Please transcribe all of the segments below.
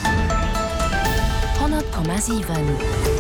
100,7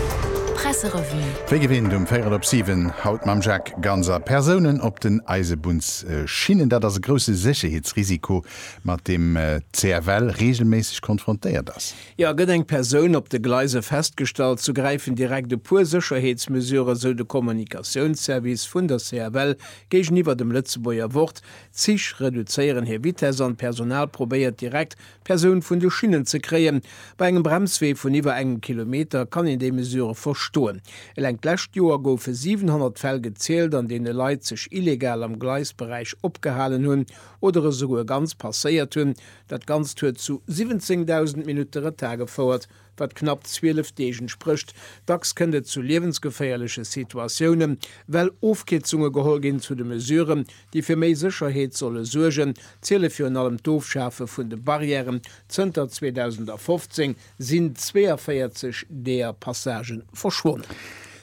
Presserevue. Wéi gewinnt um Véirel op siwen, haut mam Jacques Ganser. Persounen op den Eisebunnsschinnen, dat ass e grousse Sécherheetsrisiko, mat deem d'CFL reegelméisseg konfrontéiert ass. Jo, gëtt eng Persoun op de Gleise festgestallt, sou gräifen direkt e puer Sécherheetsmesurë, sou de Kommunikatiounsservice vun der CFL géigeniwwer dem Lëtzebuerger Wort. D'Zich reduzéieren hir Vitess an d'Personal probéiert direkt Persoun vun de Schinnen ze kréien. Bei engem Bremswee vun iwwer engem Kilometer kann een déi Mesure verstoen. Eleng d'lescht Joer goufe 700 Fäll gezielt, an deene Leit sech illegal am Gleisberäich opgehalen hunn oder esouguer ganz passéiert hunn. Dat Ganzt huet zu 17.000 Minutte Retard gefouert. wat knapp 12 Deeg entsprécht. Dacks kënnt et zu liewensgeféierleche Situatioune well Ofkierzunge geholl ginn. Zu de Mesuren, déi fir méi Sécherheet solle suergen, ziele virun allem d'Ofschafe vun de Barrièren. Zënter 2015 sinn 42 deeër Passagen verschwonnen.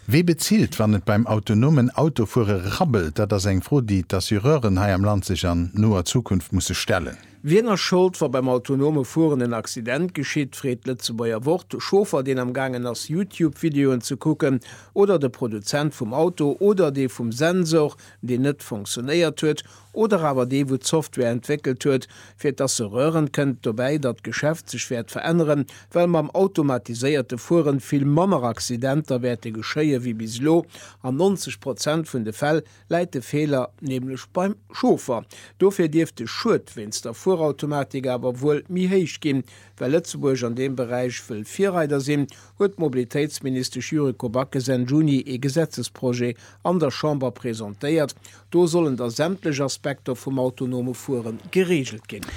Wie bezilt, wann et beim autonomen Autofuere rabbelt? Dat ass eng Fro, déi d'Assureuren hei am Land sech an noer Zukunft musse stellen. Wien ass Schold, wa beim autonome Fueren en Accident geschitt? freet d'Lëtzebuerger Wort de Chauffer, deen am gaangen ass, YouTube-Videoen ze kucken, oder de Produzent vum Auto, oder dee vum Sensor, deen net funktionéiert huet, oder awer dee, wou d'Software entwéckelt huet, fir dass se rören, kënnt dobäi, datt d'Geschäft sech wäert veränneren, well mam automatiséierte Fueren vill manner Accidenter wäerte geschéie wéi bis elo. An 90 Prozent vun de Fäll läit de Feeler nämlech beim Chauffer. Dofir dierft de Schued wéinst der Fuerautomatik awer wuel méi héich ginn. Well Lëtzebuerg an deem Beräich wëll Virreider sinn, huet d'Mobilitéitsministesch Yuriko Backes Enn Juni ee Gesetzesprojet an der Chamber presentéiert. Do sollen da sämtlech Aspekter vum autonome Fuere gereegelt ginn.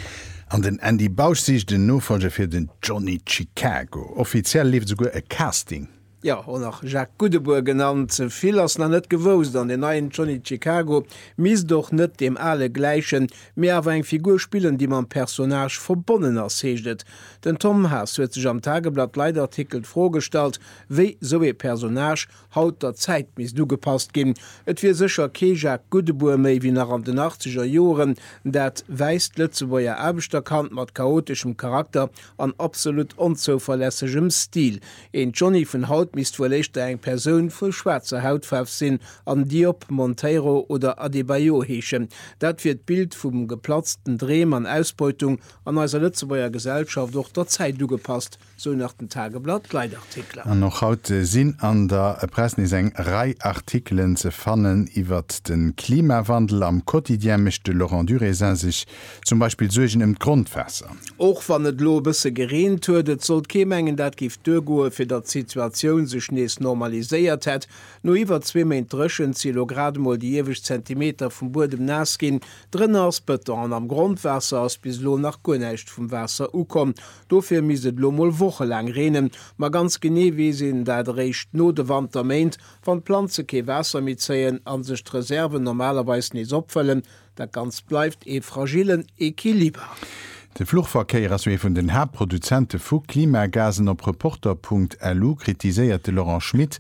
An den Andy Bausch sicht en Nofolger fir den Johnny Chicago. Offiziell leeft esouguer e Casting. Jo, och nach Jacques Goudebour genannt. Vill ass nach net gewousst an den neien Johnny Chicago misst och net deem ale gläichen, mee awer eng Figur spillen, déi mam Personnage verbonnen ass, heescht et. Den Tom Haas huet sech am Tageblatt Leitartikel d'Fro gestallt, wéi sou ee Personnage haut der Zäit misst ugepasst ginn. Et wier sécher kee Jacques Goudebour méi wéi nach an den achtzeger Joeren, dat wäisst d'Lëtzebuerger Aarbechterkand mat chaoteschem Charakter an absolut onzouverlässegem Stil. Een Johnny vun haut misst wuel éischter eng Persoun vu schwaarzer Hautfaarf sinn an Diop, Monteiro oder Adebayor heeschen. Dat wier d'Bild vu geplatzten Dreem an Ausbeutung an eiser Lëtzebuerger Gesellschaft och der Zäit ugepasst, sou nach den Tageblatt Leitartikler. An och haut sinn an der Press nees eng Rei Artikelen ze fannen iwwert de Klimawandel. Am Quotidien mécht de Laurent Durésin sech Zum Beispill d'Suergen ëm d'Grondwaasser. Och wann et elo e bësse gereent huet, et sollt kee mengen, dat géif duergoen, fir datt d'Situatioun sech nees normaliséiert hätt. No iwwer zwee Méint Dréchent si elo grad emol déi iewescht Zentimeter vum Buedem naass ginn. Drënner ass Bëton an am Grondwaasser ass bis elo nach guer näischt vum Waasser ukomm. Dofir misst et elo mol wochelaang reenen. Ma ganz genee weess een dat eréischt no de Wanterméint, wann d'Planze kee Waasser méi zéien a sech d'Reserven normalerweis nees opfëllen. Dat Ganzt bleift ee fragillen Equiliber. De Fluchverkéier ass jo ee vun den Haaptproduzente vu Klimagasen. Op Reporter Punkt LU kritiséiert de Laurent Schmit,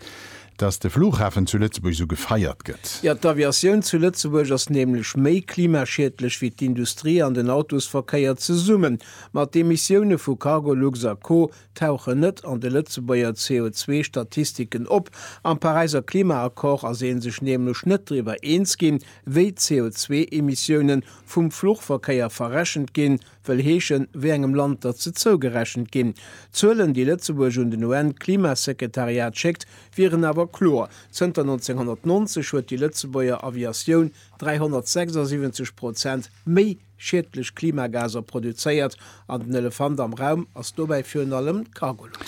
datt de Flughafen zu Lëtzebuerg esou gefeiert gëtt. Jo, d'Aviatioun zu Lëtzebuerg ass nämlech méi klimaschiedlech wéi d'Industrie an den Autosverkéier zesummen. Ma d'Emissioune vu Cargolux a Co tauchen net an de Lëtzebuerger CO2-Statistiken op. Am Paräiser Klimaaccord ass ee sech nämlech net driwwer eens ginn, Wéi d'CO2-Emissioune vum Fluchverkéier verrechent ginn, wëll heeschen, wéi engem Land datt se zougerechent ginn. D'Zuelen, déi Lëtzebuerg un den UN-Klimasekretariat schéckt, wieren awer kloer, Zënter 1990 huet déi Lëtzebuerger Aviatioun 376 Prozent méi schiedlech Klimagaser produzéiert. An den Elefant am Raum ass dobäi virun allem d'Cargolux.